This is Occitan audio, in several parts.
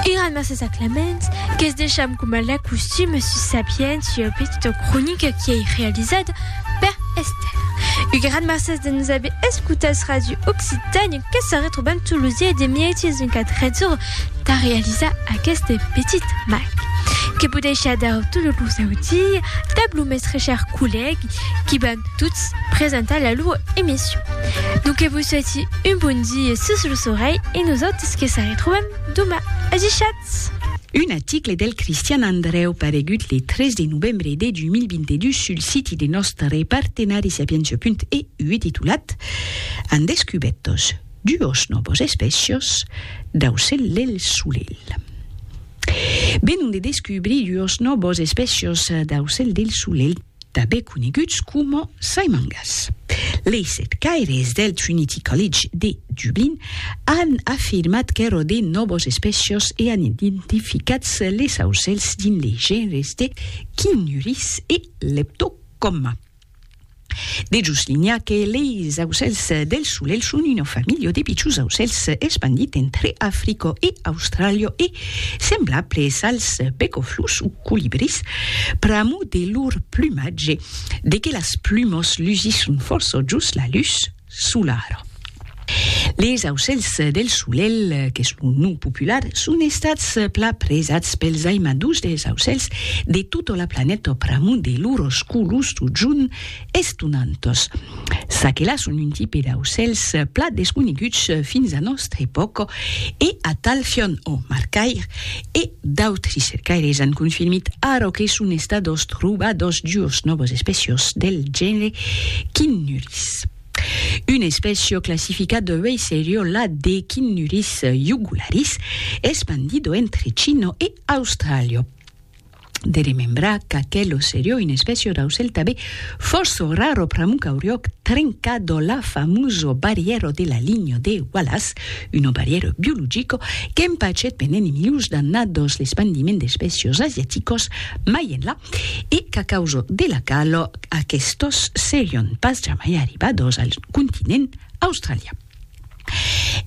Era mercés a Clement, que's deisham coma la costuma sus sa pièch ua petita cronica qui ei realizada per Esther. Un gran mercés de nos aver escotats Radio Occitània que se retrobam tot los dies de mièch en qu'a 13 ora tà realizar aqueste petit mac que podeisha dar totes los audiis dab lo mestre chèr collègue qui van tots presentar la lua emission. Donc que vos souhaiti Passatz-i un bon die sus los orelhs e nosautres que s'arretrobam doma. Ajushatz! Un article del Cristian Andrèu paregut le 3 de novembre de 2022 sul siti de nòstre partenari Sapientia.eu e titulat An descubètos duos nòvos espècios d'aucèl del solelh. Venon de descubrir duos nòvos espècios d'aucèl del solelh. Tanben coneguts coma Saimangas. Leis eth caires del Trinity College de Dublin an afirmat qu'èra de nòvas espècias e an identificat les aucèls dins les genres de Cinyuris e Leptocomma. De jos linha que leis aucèls del solelh son una familha de pichons aucèls espandit entre Africa e Austràlia e semblables als pecoflus o colibrís pr'amor de lor plumatge, de que las plumos lusisson fòrça jos la lutz solara. Les aucèls del solelh, qu'es lo nom popular, son estats plan presats pels aimadors dels aucèls de tota la planeta pr'amor de lors colors totjorn estonantos. S'aquela son un tipe d'aucèls plat desconeguts fins a nòstra epòca e atal Fionn O. Marcaire e d'autri cercaires an confirmit ara que son estados trobados duos nòvos espècios del genre Chinnurris. Un espècio classificat de uèi serior la de Chinnurris jugularis, espandido entre China e Austràlia. de remembrar qu'aquel osseriò in espècia d'aucèl tabé fòrço rar o pramuc auriòc trencat o la famoso barrièro de la linha de Wallace, uno barrièro biologico qu'empachèt pendent i milius d'annat dos l'espandiment d'espècios asiaticos mai enlà e qu'a causa de la calor aquestos serion pas jamai arribados al continent australian.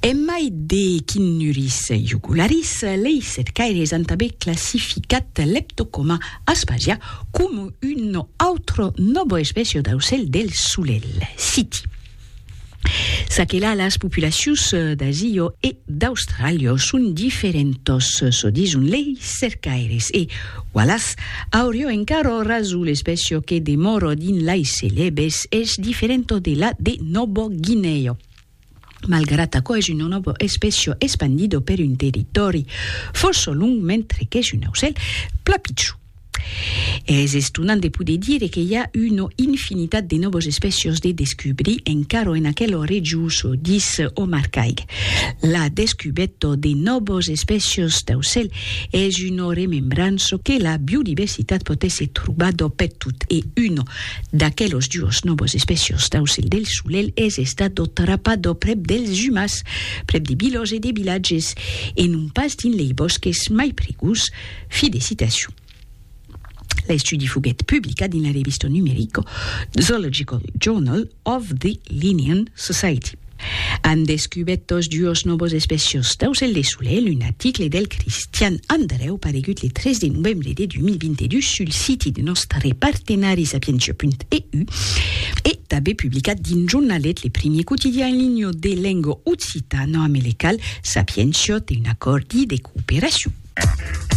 En mai de quinuris jugularis, lei cercaires an tanben classificat Leptocoma aspasia coma un autre nòbo espècia d'aucèl del solelh, citi. Ça que la, las populacions d'Asia e d'Austràlia son diferentas, çò dison lei cercaires, e Wallace, aurio encaro raso l'especio que demoro dins lais celebes es diferento de la de Nobo Guineo. Malgrat aquò es un nobo especio espandido per un territòri fòrça long mentre qu'es un aucèl pla pichon. Es estonant de poder dire que i a una infinitat de nobos especios de descubrir encaro en aquelo rejos, dís Omar Caig. La descubèto de nobos especios d'aucèl Es una remembrança que la biodiversitat pòt èsser trobada pertot e una d'aquelas duas novas espècias d'aucèl del solelh es estada trapada prèp dels umas, prèp de vilas e de vilatges, e non pas dins lei bòsques mai prigós. Fi de citacion. L'estudi foguèt publicat dins la revista numerica Zoological Journal of the Linnean Society. An descubèt tos duos nòvos espècias d'aucèl de solelh, un article del Cristian Andrèu paregut le 3 de novembre de 2022 sul siti de nòstre partenari sapientia.eu e tanben publicat dins Jornalet, le primier quotidian en linha de lenga occitana americal, Sapientia té un acòrdi de cooperacion.